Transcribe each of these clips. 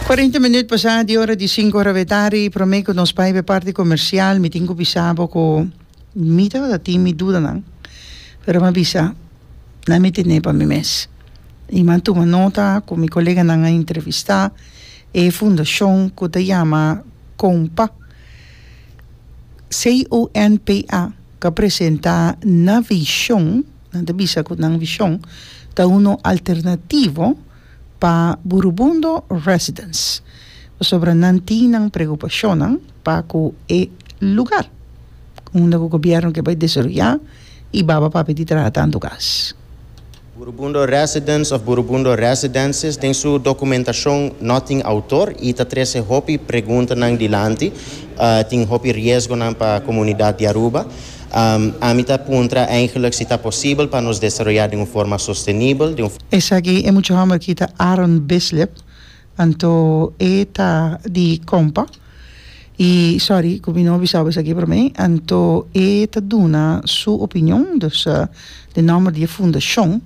Cuarenta minuut pasá di ora di sinku ora be tardi, prome cu nos bai be parti comercial mi tin cu bisa bo cu mi tabata tin mi dudanan pero mi a bisa nan mi tene pa mi mes y mi a tuma nota cu mi coleganan a entrevista e fundacion cu ta yama CONPA, C-O-N-P-A, cu a presenta nan vision. Nan ta bisa cu nan vision ta unu alternativo pa Burubundo Residence pasobra nan tin nan preocupacionnan pa cu e lugar unda cu gobierno ke bai desaroya y baba papia di traha tanto gas. Burubundo Residence of Burubundo Residences den su documentacion no tin autor y ta trece hopi preguntanan dilanti. Tin hopi riesgonan pa comunidad di Aruba. Ami ta puntra eigenlijk si ta posibel pa nos desaroyá den un forma sostenibel. Esaki e mucha hòmber aki ta Aaron Bislip, anto e ta di Kompa, i sòri ku mi no bisa bo esaki promé, anto e ta duna su opinion, dus den nòmber di e fundashon.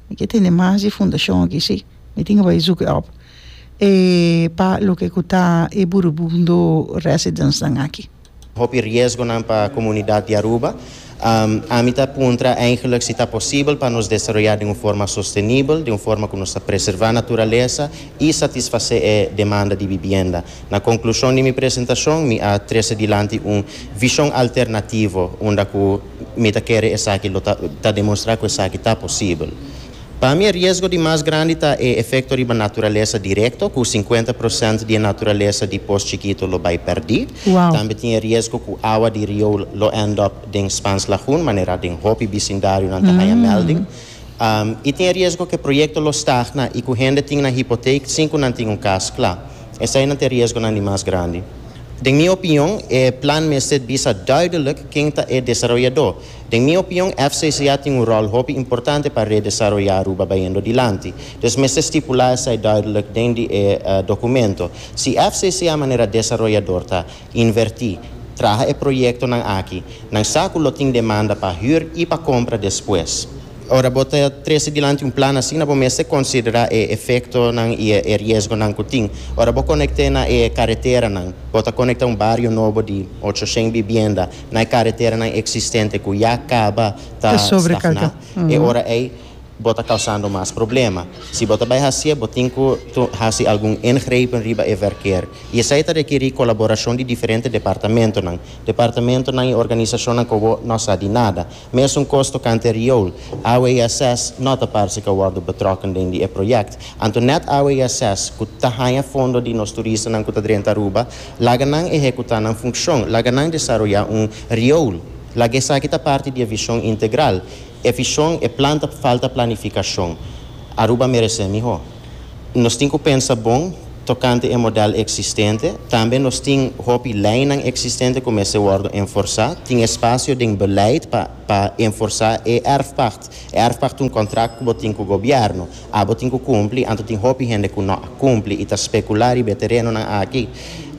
Mi ke tende mas di e fundashon aki, sí. Mi tin ke bai zùkè òp e pa loke ku ta e Burubundo residensnan aki. Hopi riesgonan pa komunidat di Aruba. Ami ta puntra eindelijk si ta posibel pa nos desaroyá den un forma sostenibel, den un forma ku nos ta preservá naturalesa i satisfasé e demanda di bibienda. Na konklushon di mi presentashon mi a trese dilanti un vishon alternativo unda ku mi ta kere esaki lo ta ta demonstrá ku esaki ta posibel. Pa mi e riesgo di mas grandi ta e efekto riba naturalesa direkto, ku sinkuenta prosènt di e naturalesa di pos chikito lo bai pèrdí. Tambe tin e riesgo ku awa di rioul lo end up den Spans Lagoon, manera den hopi bisindarionan ta haña mèlding. I tin e riesgo ku e proyekto lo stagna i ku hende tin nan hipotake sin ku nan tin un kas kla. Eseinan ta e riesgonan di mas grandi. Den mi opinion, e plan mester bisa duidelik ken ta e desaroyadó. Den mi opinion FCCA tin un ròl hopi importante pa redesaroyá Aruba bayendo dilanti. Dus mester stipulá esei duidelijk den di e dokumento. Si FCCA manera desaroyador ta invertí, traha e proyektonan aki, nan sa ku lo tin demanda pa hür i pa kompra despues. Ora bo ta trese dilanti un plan asina bo mester konsiderá e efektonan i e riesgonan ku tin. Ora bo konekte na e kareteranan, bo ta konektá un bario nobo di ocho shen bibienda. na e kareteranan eksistente ku ya kaba ta stagná, e ora ei bo ta kausando mas problema. Si bo ta bai hasié, bo tin ku hasi algun ingrepen riba e verkeer. I esei ta rekerí kolaborashon di diferente departamentonan, departamentonan i organisashonnan ku bo no sa di nada. Mesun kos tokante riool, awe i ases no ta parse ka wòrdu betrokken den di e proyèkt. Anto nèt awe i ases ku ta haña fondo di nos turistanan ku ta drenta Aruba, laga nan ehekutá nan funshon, laga nan desaroyá un riool, laga esaki ta parti di e vishon integral. E vishon, e plan ta falta planifikashon. Aruba meresé mihó. Nos tin ku pensa bon tokante e modèl eksistente. Tambe nos tin hopi leinan eksistente ku mester wòrdu enforsá. Tin espasio den beleid pa pa enforsá e èrfpacht. E èrfpacht ta un kontrakt ku bo tin ku gobièrnu. Abo tin ku kumpli, anto tin hopi hende ku no a kumpli i ta spekulá riba e terenonan aki.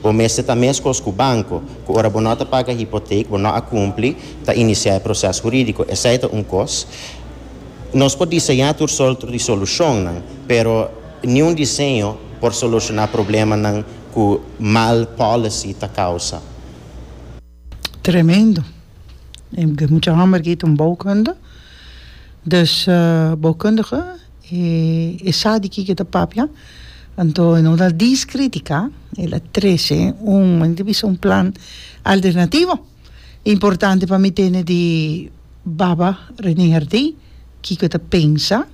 Bo mester ta meskos ku banko, ku ora bo no ta paga hipotek, bo no a kumpli, ta inisiá e proses hurídiko. Esei ta un kos. Nos por diseñá tur sort di solushonnan, pero niun diseño por solushoná problemanan ku mal policy ta kousa. Tremendo. E mucha hòmber ki ta un boukunde. Dus boukundige e sa di kiko e ta papia. Anto e no ta diskritika, el a trese un, men e ta bisa un plan alternativo. Importante pa mi tene di baba Rene Herdé kiko e ta pensa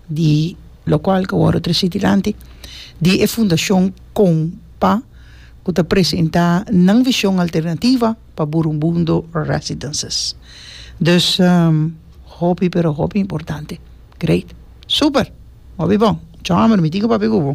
di lokual ku wòrdu trasí dilanti, di e fundashon Kompa ku ta presentá nan vishon alternativa pa Burunbundo Residences. Dus hopi pero hopi importante. Great! Super! Hopi bon. Chòmber, mi tin ku papia ku bo.